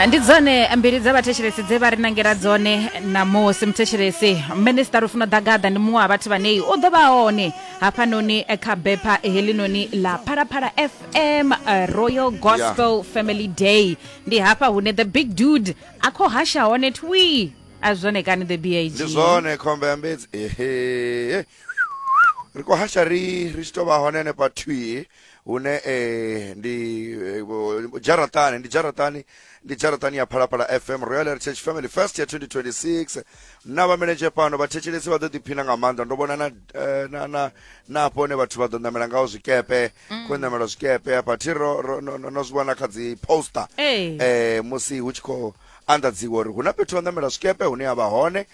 ndi dzone mbili dza vhathetshelesi dze vha ri nangela dzone namusi muthetshelesi minista rufuna ḓagaḓa ndi muṅwe wa vhathu vhanei u ḓo vha hone hafhanoni kha bepha helinoni ḽa phalaphala fm eh, royal gospel family day ndi hafha hune the big dude a khou hasha hone twi a zwone kani the bag ndi zwone khombe ya mbedzi ehe ri khou hasha ri ri tshi tou vha hone hanefha thwii hune eh, ndi eh, bo- jaratani ndi jaratani ndi jaratani ya phalaphala fm royal heritage family fest ya 2026 na vhameledzhe pano vhathetshelesi vha ḓo ḓiphina nga maanḓa ndo vhona na eh, na na na hafho hune vhathu vha ḓo ṋamela ngaho zwikepe khou ṋamela zwikepe hafha thi ro ro- no no- no zwi vhona kha dzi poster Ee. eh musi hu tshi khou anḓadziwa uri hu na fhethu ha ṋamela zwikepe hune ha vha hone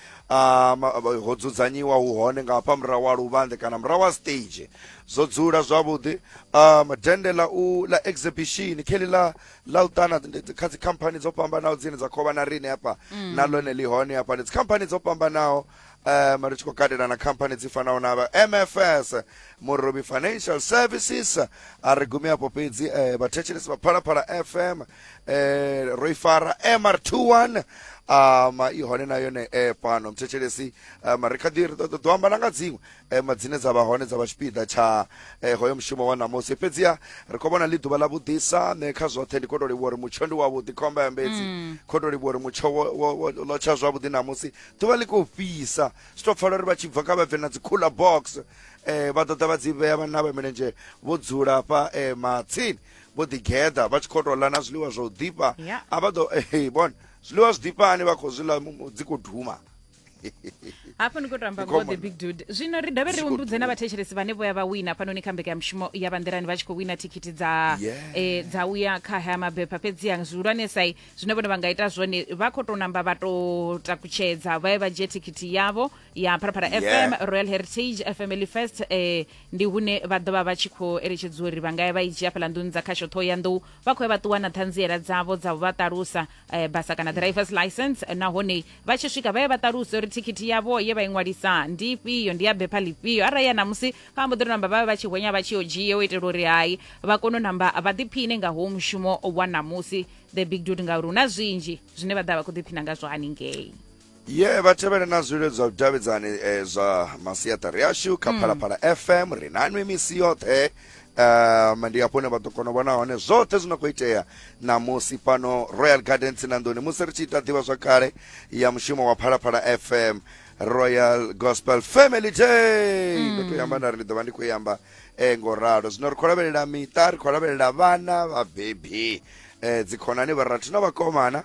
ho dzudzanyiwa hu hone nga hafha murahu wa luvhanḓe kana murahu wa stage zwo dzula zwavhuḓi um dende ḽa u ḽa exhibition kheli ḽa ḽa u ṱana kha dzikhamphani dzo fhambanaho dzine dza khou vha na rine hafha mm. na ḽone ḽi hone hafha ndi dzikhamphani dzo fhambanaho um ri tshi khou katela na khamphani dzi fanaho na vha mfs murobi financial services a ri gumi afho fhedzi um vhathetshelesi vha phalaphala fm eh ro i fara mr21 um i hone na yone e fhano mthetshelesi um ri kha ḓi ri ṱoḓa ḓo amba na nga dziṅwe um dzine dza vha hone dza vha tshipiḓa tsha eh, hoyo mushumo wa ṋamusi fhedziha ri khou vhona ḽi ḓuvha ḽa vhuḓisa nṋe kha zwoṱhe ndi khou tou livhuwa uri mutsho ndi wavhuḓi khomba ya mbedzi khou tou livhuwa uri mutsho wo- wo- wo- ḽo tsha zwavhuḓi ṋamusi ḓuvha ḽi khou fhisa zwi tou pfala uri vha tshi bva kha vha bve na dzi cooler box eh vha ḓoḓa vha dzi vhea vhanna vha milenzhe vho dzula hafha eh matsini vho ḓi geḓa vha tshi khou tou ḽa na zwiḽiwa zwa u ḓifha yeah. a vha ḓo hey, bona zwiḽiwa zwi ḓifhani vha khou zwi ḽa dzi khou duma hafho ni khou tamba ngo the big dude zwino ri dovhe ri humbudze na vhathetshelesi vhane vho ya vha wina hafhanoni kha mbekanyamushumo ya banḓirani vha tshi khou wina thikhithi dza eh, dza u ya kha haya mabepha fhedziha zwihulwanesai zwine vhone vha nga ita zwone vha khou tou namba vha tou takutshedza vha ye vha dzhie thikhithi yavho ya phalaphala yeah. fm royal heritage fm elifest eh, ndi hune vha ḓovha vha tshi khou eletshedziwa uri vha nga ya vha i dzhia fhala nḓuni dza khasho ṱhoho ya nḓou vha khou ya vha ṱuwa na ṱhanziela dzavho dza vha ṱalusa eh, basa kana drivers license eh, nahone vha tshi swika vha ye vha ṱaluse uri thikhithi yavho ye vha i ṅwalisa ndi ifhio ndi ya bepha lifhio arali ya namusi vha mbo ḓi ri namba vha vhe vha tshi hwenya vha tshi yo dzhie u itela uri hai vha kone u namba vha ḓiphine nga ho mushumo wa namusi the big dude ngauri hu na zwinzhi zwine vha ḓa vha khou ḓiphina ngazwo haningei ye vha tevhele na zwililo zwa vhudavhidzani eh, zwa masiaṱari ashu kha mm. phalaphala fm ri na nwi misi yoṱhe um ndi hafho hune vha ḓo kona u vhona hone zwoṱhe zwi no khou itea ṋamusi fhano royal gardens na nḓuni musi ri tshi ita ḓivha zwa kale ya mushumo wa phalaphala fm royal gospel family day mm. ndo to yamba nda ri ndi ḓo vha ndi khou yamba um eh, ngo ralo zwino ri khou lavhelela miṱa ri khou lavhelela vhana vhabebi um eh, dzikhonani vharathu na vhakomana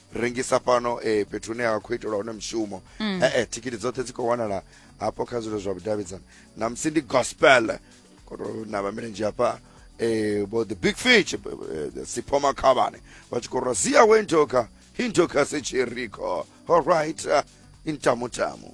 rengisa fhano eh, fhethu hune ha khou itelwa hone mushumo mm. eh, eh, thikhithi dzoṱhe dzi khou wanala hafho kha zwilo zwa vhudavhidzani na musi ndi gospel koto na vhamilendzhi hafha eh, bo the big fish eh, eh, sipho makhavhane vha tshi khou rwa sia wentoka hintoka sechiriko allright uh, eh, intamutamu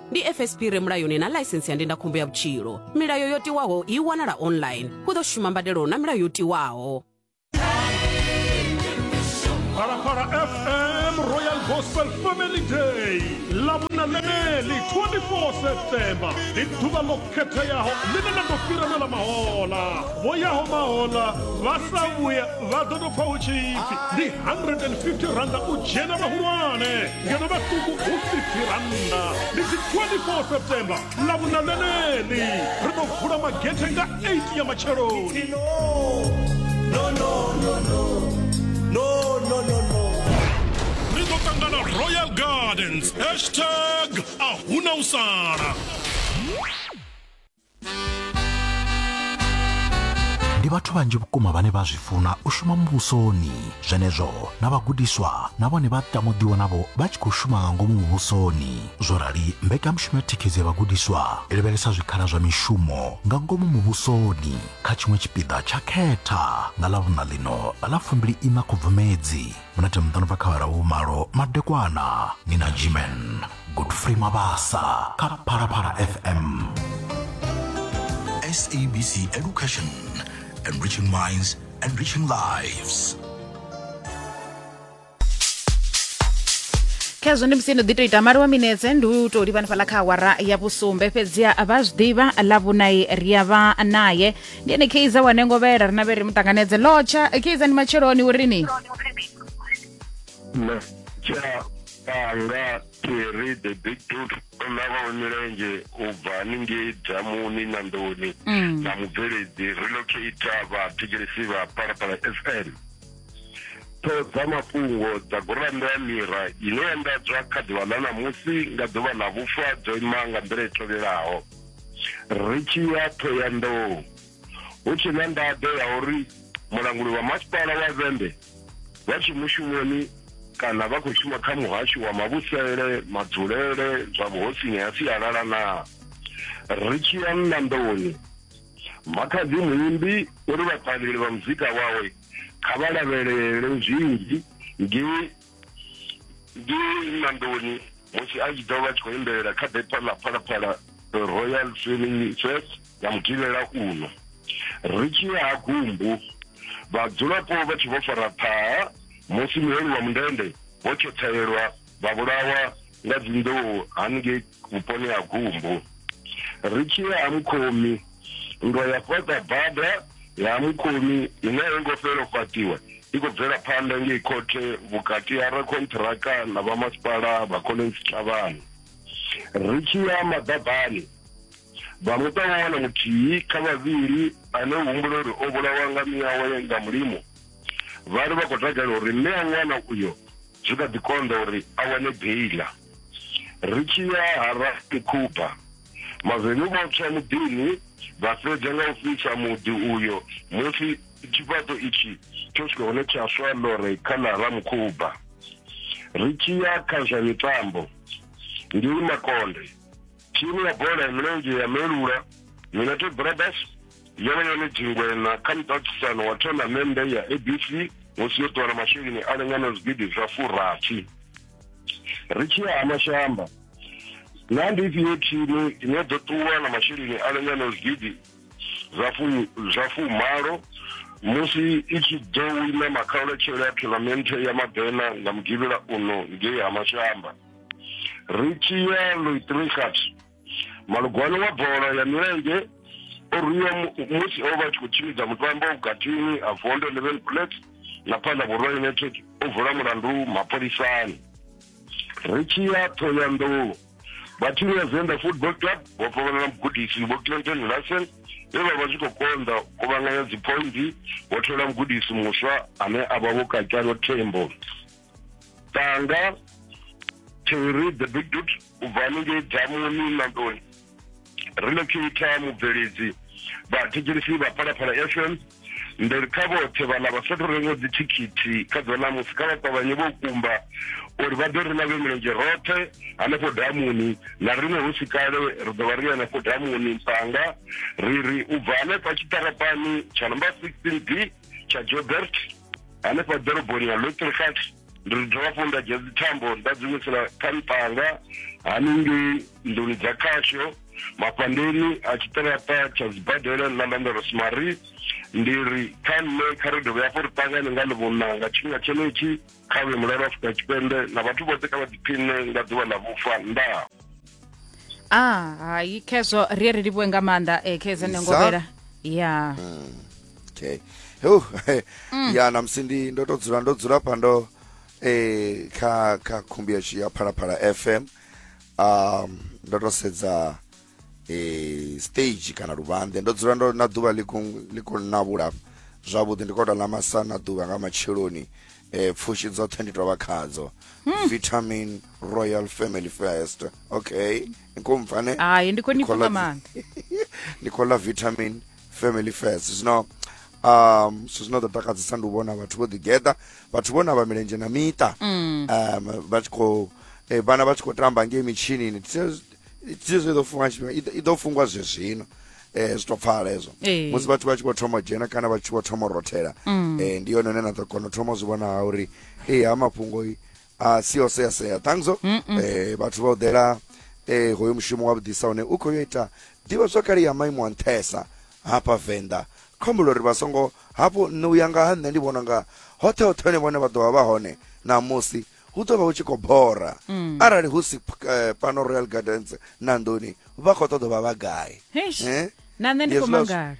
ndi fsp re mulayoni na ḽaisensi ya ndindakhombo ya vhutshilo milayo yo tiwaho i wanala online hu ḓo shuma mbadelo na milayo yo tiwaho Phalaphala FM Royal Gospel Family Day ḽa vhunaneli 24 Septemba ndi ḓuvha ḽo khetheaho ḽine ḽa ḓo fhira na ḽa mahola vho yaho mahola vha sa vhuya vha ḓo tou pfa hu tshipfi ndi 150 randa u dzhena vhahulwane ngeno vhaṱuku khosi tirannda ndi dzi 24 septemba ḽa vhuna ḽeneḽi ri ḓo vula magethe nga 8 ya matsheloni ri ḓo ṱangana royal gardens hashtag a huna u sala ndi vhathu vhanzhi vhukuma vhane vha zwi funa u shuma muvhusoni zwenezwo na vhagudiswa na vhone vha tamuḓiwa navho vha tshi khou shuma nga ngomu muvhusoni zwo rali mbekanyamushumo ya thikhedzo ya vhagudiswa i lavhelesa zwikhala zwa mishumo nga ngomu muvhusoni kha tshiṅwe tshipiḓa tsha khetha nga ḽa vhuṋa ḽino ḽa fumbili ina khubvumedzi minete miṱanu bva kha awara vhumalo madekwana ni na gman godfrey mabasa kha phalaphala fm sabc education enriching minds enriching lives khezwo ndi musi no ḓi to ita mali wa minetse ndi u tou livha hanefhaḽa kha awara ya vhusumbe fhedziha vha zwi ḓivha ḽa vhunai ri a vha naye ndi ene keiza wane ngovhela rina vhe ri mu ṱanganedze lotsha keiza ndi matsheloni u ri ni na tsha anga thiri the big dot na vhawe milenzhe u bva haningei damuni na ndoni Mm. na mubveledzi relocata vhathetshelesi vha palapala fm ṱhoho dza mafhungo dza gurannda ya mira ine ya ndadzwa kha ḓuvha ḽa ṋamusi nga ḓuvha ḽa vhufa dzo ima nga nḓila i tevhelaho ri tshi ya Thohoyandou hu tshe na nḓaḓo ya uri mulanguli wa masipala wa Vhembe vha tshe mushumoni kana vha khou shuma kha muhasho wa mavhusele, madzulele, zwa vhuhosini ha sialala na ri tshi ya Nnanḓoni makhadzi muimbi uri vhaṱaleli vha muzika wawe kha vha lavhelele zwinzhi ngei ndi nandoni musi a tshi ḓo vha tshi khou imbelela kha bepa ḽa phalaphala royal filming fest ya muthivhela uno ri tshi ya ha gumbu vhadzulapo vha tshi vho fara ṱhaha musi muholi wa mundende vho tshotshelelwa vha vhulawa nga dzinḓou haningei vhuponi ha gumbu ri tshi ya ha mukhomi nndwa ya fhaṱa bada ya ha mukhomi ine a yo ngo fhela u fhaṱiwa i khou bvela phanḓa ngei khothe vhukati ha rakhonṱhiraka na vhamasipala vha collins thavhani ri tshi ya maḓabani vha muṱa wa wana muthihi kha vhavhili ane u humbula uri o vhulawa nga miyawe nga mulimo vha ri vha khou takalela uri mme a ṅwana uyo zwi kha ḓi konḓa uri a wane beila ri tshi ya ha rasi khuba mavenyu vho tswa muḓini vha fhedza nga u fhisa muḓi uyo musi tshifhaṱo itshi tsho swika hone tsha swa lore kha ḽa ramukhuba ri tshi ya kha zwa mitambo ngei makonde Thimu ya bola ya milenzhe ya Melula United Brothers yo vha yone dzingwena kha muṱaṱisano wa thonamennde ya ABC musi yo ṱuwa na masheleni a lingana zwigidi zwa furathi. Ri tshi ya ha mashamba, naa ndi ifhio thimu ine ḓo ṱuwa na masheleni a lingana zwigidi zwa fu zwa fumalo musi i tshi ḓo wina makhauletshelo a thonamennde ya Madena nga Mugivhela uno ngei ha mashamba? Richie Lloyd Richard malugwani wa bola ya milenzhe o rwiwa musi o vha tshi khou tshimbidza mutambo vhukatini ha vondo eleven plate na phanḓa vhurwa united o vula mulandu mapholisani Richie Thoyandou vha thimu ya zenda football club vho fhavhana na mugudisi vho clinton larsen vhe vha vha zwi khou konḓa kuvhanganya dziphoindi vho thola mugudisi muswa ane a vha vho kakalo tembo tanga to read the big dude u bva haningei dzamuni nandoni relocator mubveledzi vhathetshelisi vha phalaphala fm ndi kha vhoṱhe vhaḽa vha sathu rengo dzithikhithi kha ḓuvha ḽa musi kha vha ṱavhanye vho kumba uri vha ḓo ri na vhe milenzhe roṱhe hanefho damuni na riṋe hu si kale ri ḓo vha ri hanefho damuni mpanga ri ri u bva hanefha tshiṱarapani tsha number sixteen d tsha jobert hanefha ḓoroboni ya lotrikat ndi ri dovha fho nda dzhia dzithambo nda dzi wisela kha mpanga haningei nḓuni dza khasho mafhandeni a tshiṱaraṱa tsha dzibadela ḽa landa rosemary ndi ri kha nṋe kha ri dovhe hafho ri ṱangane nga ḽivhona nga tshifhinga tshenetshi kha vhe mulalo afrika tshipembe na vhathu vhoṱhe kha vha ḓiphiṋe nga ḓuvha ḽa vhufa ndaa a ah, hayi khezwo ri ye ri livhuwe nga maanḓa um eh, khezwo nengovhela ya hmm, okay hu hmm. ya na musi ndi ndo to dzula ndo dzula pa ndo eh kha kha khumbi ya phalaphala fm um ndo to sedza eh, stage kana luvhanḓe ndo dzula ndo na ḓuvha ḽi khou navhula zwavhuḓi ndi kota ḽa masa na ḓuvha nga matsheloni eh, pfushi dzoṱhe ndi tovha khadzo hmm. vitamin royal family first okay nkomfane hayi ndi khou ni pfha maanḓa ndi khou ḽa vitamin family first zwino um so zwino ḓo takadzisa ndi u vhona vhathu vho ḓigeḓa vhathu vho na vha milenzhe na miṱa mm. um vha tshi khou eh, vhana vha tshi khou tamba ngei mitshinini tizwe iḓo fungwa tshifhinga iḓo fungwa zwe zwino eh zwi to pfala hezwo eh. musi vhathu vha tshi khou thoma dzhena kana vha tshi khou thoma rothela mm. eh ndi yone ine na ḓo kona u thoma zwi vhona ha uri eh ha mafhungo a si o sea sea thangiso eh vhathu vha u ḓela eh hoyo mushumo wa vhudisa hone u khou yo ita ḓivha zwa kale ya maimo a nṱhesa hafha venḓa khombulo uri vha songo hafho nṋe u ya nga ha nṋe ndi vhona nga hoṱhe hoṱhe hone vhone vha ḓo vha vha hone na musi hu ḓo vha hu tshi khou bora mm. arali hu si eh, pano royal gardens na ndoni vha khou ṱoḓa vha vha gai eh? na nṋe ndi khou mangala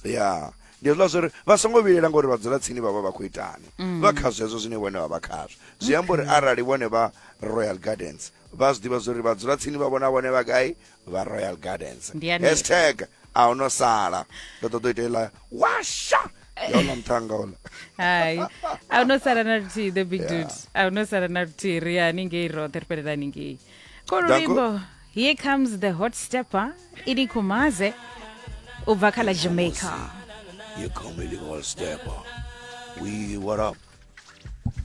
ya ndi hezwiḽa zwo ri vha songo vhilela ngori vha dzula tsini vha vha vha khou itani mm. vha kha zwezwo zwine vhone vha vha khazwo zwi amba uri arali vhone vha royal gardens vha zwi ḓivha zwo ri vha dzula tsini vha vhona vhone vha gai vha royal gardens Ndi ya nṋe. hashtag a hu no sala ndo ṱoḓa u ita iḽa washa yono nṱhanga ola hai a hu no sala na luthihi the big dude a hu no sala na luthihi ri ya haningei roṱhe ri fhelela haningei ko Danko. luimbo here comes the hot stepper ini kumaze u bva kha la jamaica you come illegal stepper we what up